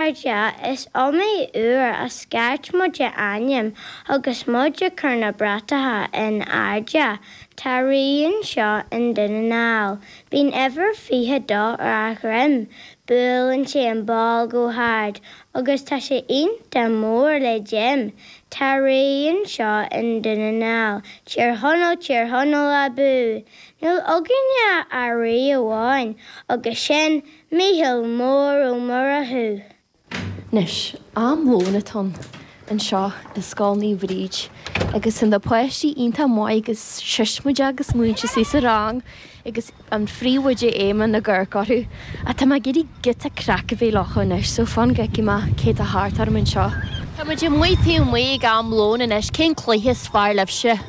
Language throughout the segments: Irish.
Cairde, Is iomaí uair a scairt muid a ainm agus muid ag cur na bratacha in airde. Tá rí anseo i nDún na nGall. Bíonn uimhir 22 ar a dhroim. Buaileann sé an bál go hard agus tá sé iontach mór le Jim. Tá rí anseo i nDún na nGall. Tír Chonaill, Tír Chonaill abú! Níl againne ach rí amháin agus sin Micheál Mór Ó Murchú. Anois, am lóin atá ann anseo i Scoil Naomh Bríd agus tá na páistí iontach maith agus siosmaide agus na múinteoirí sa rang agus an príomhoide Éamonn ag amharc orthu. Ach tá mé ag iarraidh giota craic a bheith againn leo anois so fan go fheicfidh mé cé atá thart orm anseo. Tá muid amuigh taobh amuigh ag am lóin anois, cén cluiche is fearr libhse?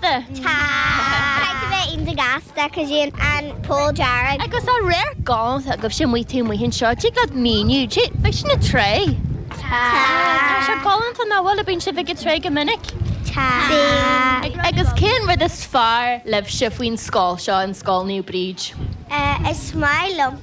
Tá. Tá. Caithfidh tú bheith iontach gasta cosúil leis an an poll dearg. Agus dá réir go dté sibh amuigh taobh amuigh anseo, tig leat míniú, té, beidh sin ag tré? Tá. Tá sé galánta ó bhuel an mbíonn sibh ag ag tré go minic? Tá. Bíonn. Agus cén rud is fearr libhse faoin scoil seo, an Scoil Naomh Bríd? Eh, is maith liom.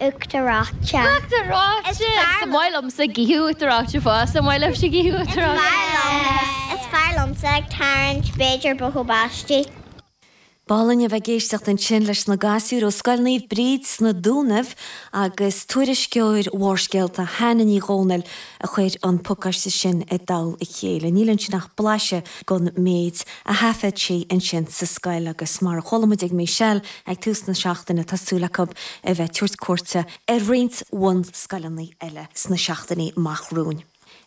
Uachtaráite. Is fearr liomsa Gaoth Uachtaráite fós, an maith libhse Gaoth Uachtaráite? Is fearr liomsa ag tarraingt pictiúr bogha báistí. B'álainn a bheith ag éisteacht ansin leis na gasúir ó Scoil Naomh Bríd sna Dúnaibh agus tuairisceoir Bharrscéalta, Hannah Ní Dhomhnaill, a chuir an pacáiste sin i dtoll a chéile. Níl ansin ach blaiseadh den mhéid a thaifead sí ansin sa scoil agus mar a chuala muid ag Michelle ag tús na seachtaine tá súil acu a bheith ag tabhairt cuairte ar roinnt bunscoileanna eile sna seachtainí amach romhainn.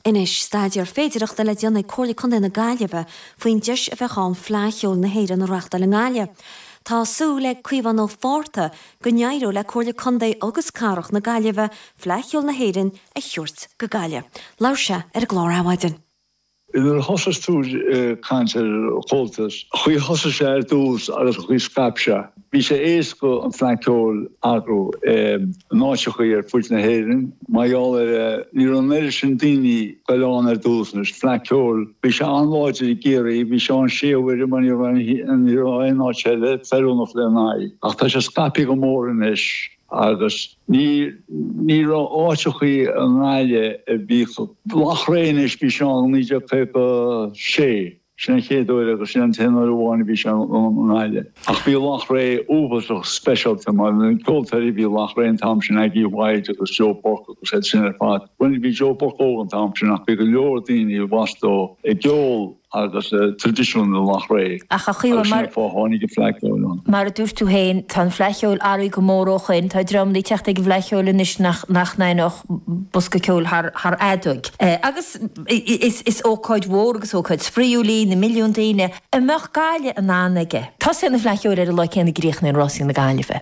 Anois staidéar féidireachta le déanamh ag Comhairle Contae na Gaillimhe faoin deis a bheadh ann Fleadh Cheoil na hÉireann a reachtáil i nGaillimh. Tá súil ag Caomhan Ó Fátharta go n-éireoidh le Comhairle Contae agus Cathrach na Gaillimhe Fleadh Cheoil na hÉireann a thabhairt go Gaillimh. Labhair sé ar an gclár Adhmhaidin. Nuair a thosaigh tú ag caint ar Chomhaltas, Chuaigh thosaigh sé ar dtús agus chuaigh scaip sé. Bhí sé éasca an fleadh ceoil a chur in áiteachaí ar fuid na hÉireann. Mar gheall air ní raibh an oiread sin daoine ag goil ann ar dtús anois, fleadh ceoil, bhí sé an-láidir i gCiarraí, bhí sé ann sé uaire mar ní raibh aon áit eile feiliúnach lena aghaidh. Ach tá sé scaipthe go mór anois. Agus ní raibh áiteachaí i nGaillimh a bhíodh. Loch Riach anois, bhí sé ann i 1956, sin an chéad uair agus sin an t-aon uair amháin a bhí sé ann i nGaillimh. Ach bhí Loch Riach uafásach speisialta mar na ceoltóirí a bhí i Loch Riach an t-am sin, Aggie Whyte agus Joe Burke agus iad sin ar fad. Bhuel ní bhí Joe Burke óg an t-am sin ach bhí go leor daoine a bhí ag plé le ceol agus traidisiún i Loughrea agus sin an fáth tháinig an Fleadh Cheoil ann. Mar a dúirt tú féin, tá an Fleadh Cheoil athraithe go mór ó shoin, tá dream le teacht ag an bhFleadh Cheoil anois nach n-aithneodh bosca ceoil thar fheadóg. Agus is ócáid mhór agus ócáid spraíúil í, na milliúin daoine an mbeadh Gaillimh in ann aige. Tosaíonn an Fleadh Cheoil ar an lá céanna a gcríochnaíonn Rásaí na Gaillimhe.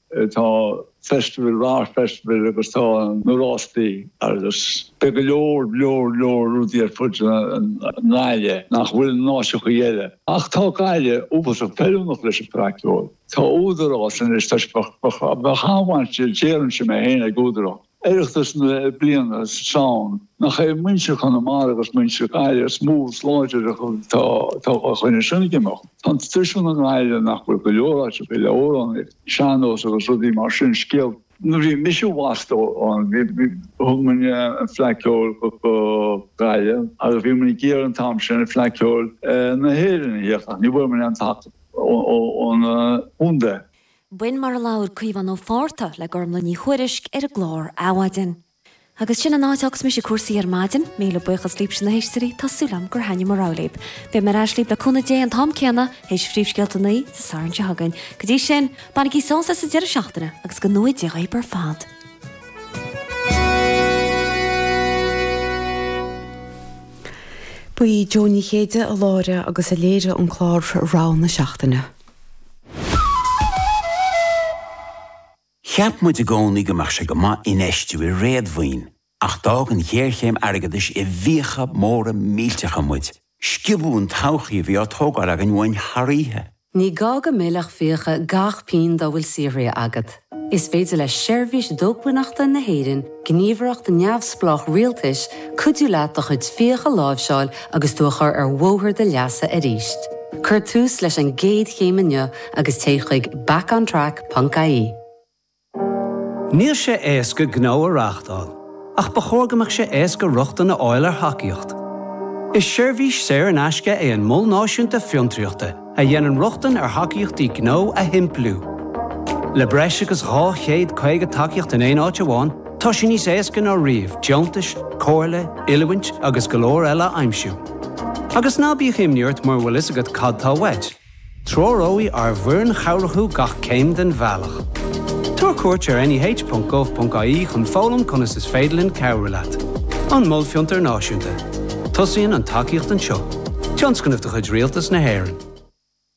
tá festival, Arts Festival agus tá na rástaí agus beidh go leor, leor, leor rudaí ar fud na Gaillimhe nach bhfuil in áiteachaí eile. Ach tá Gaillimh uafasach feiliúnach leis an bhFleadh Ceoil. Tá údarás anois, tá sé, bheadh an-bhaint, déarfainnse mé féin, ag údarás. Oireachtas na bliana sa Samhain, nach é muintir Chonamara agus muintir na Gaillimhe is mó is láidre atá ag coinneáil sin ag imeacht. Tá an traidisiún i nGaillimh nach bhfuil go leor áiteacha eile ó amhránaíocht sean-nós agus rudaí mar sin, scéal. Nuair a bhí mise i bhfastó ann, thug muid an Fleadh Ceoil go Gaillimh agus bhí muid ag iarraidh an t-am sin Fleadh Ceoil na hÉireann a thíocht ach ní bhfuair muid aon tacaíocht ón gcontae. B'in mar a labhair Caomhán Ó Fátharta le Gormlaith Ní Thuairisg ar an gclár Adhmhaidin. Agus sin an áit fhágfas mise cúrsaí ar maidin. Míle buíochas daoibhse na héisteoirí, tá súil agam gur thaitnigh mo rogha libh. Beidh mé ar ais libh le cúnamh Dé an t-am céanna, théis phríomhscéalta a naoi, Dé Sathairn seo chugainn. Go dtí sin, bainigí sásamh as an deireadh seachtaine agus go ngnóthaí Dia dhaoibh ar fad. Ba í Jó Ní Chéide a láithrigh agus a léirigh an clár Rogha na Seachtaine. Cheap muid i gcónaí go mbeadh sé go maith infheistiú i réadmhaoin, ach d'fhág an ghéarchéim airgeadais i bhfiacha móra millteacha muid. Sciobadh an todhchaí a bhí á tógáil againn uainn thar oíche. Ní gá go meilfeadh fiacha gach pínn dá bhfuil saothraithe agat. Is féidir le Seirbhís Dócmhainneachta na hÉireann, gníomhaireacht neamhspleách rialtais, cuidiú leat do chuid fiach a láimhseáil agus tú a chur ar bhóthar do leasa arís. Cuir tús leis an gcéad chéim inniu agus téigh chuig backontrack.ie. Níl sé éasca gnó a reáchtáil, ach ba chóir go mbeadh sé éasca rochtain a fháil ar thacaíocht. Is seirbhís saor in aisce é an Mol Náisiúnta Fiontraíochta, a dhéanann rochtain ar thacaíochtaí gnó a shimpliú. Le breis agus 250 tacaíocht in aon áit amháin, tá sé níos éasca ná riamh deontais, comhairle, oiliúint agus go leor eile a aimsiú. Agus ná bíodh imní ort mura bhfuil fhios agat cad tá uait, treoróidh ár bhfoireann chabhrach thú gach céim den bhealach. Tabhair cuairt ar neh.gov.ie chun foghlaim conas is féidir linn cabhrú leat. An Mol Fiontar Náisiúnta. Tosaíonn an tacaíocht anseo, tionscnamh de chuid Rialtas na hÉireann.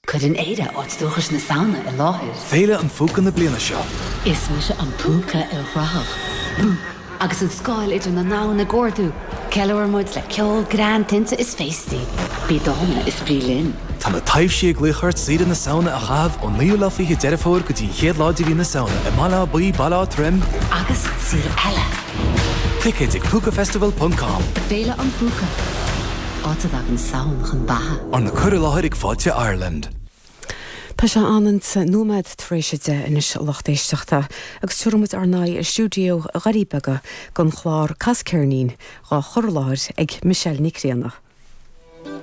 Cuireann Éire áit dúchais na Samhna i láthair. Féile an Phúca na bliana seo. Is mise an Púca ilchruthach, bú! Agus an scáil idir na ndomhan ag ardú, ceiliúrann muid le ceol, greann, tinte is féastaí. Bí dána is bí linn! Tá na taibhsí ag glaoch ort saoire na Samhna a chaitheamh ón 9ú lá 20 Deireadh Fómhair go dtí an 1ú lá de mhí na Samhna i mBaile Átha Buí, Baile Átha Troim, agus saol eile! Ticéid ag púcafestival.com. Féile an Phúca, áit a dtagann Samhain chun beatha. Arna cur i láthair ag Fáilte Ireland. Tá sé an ionta nóiméad tar éis a deich anois, a lucht éisteachta, agus tabharfaimid ár n-aghaidh ar stiúideo Dhoirí Beaga don chlár Cas Ceirnín dhá chur i láthair ag Michelle Nic Grianna.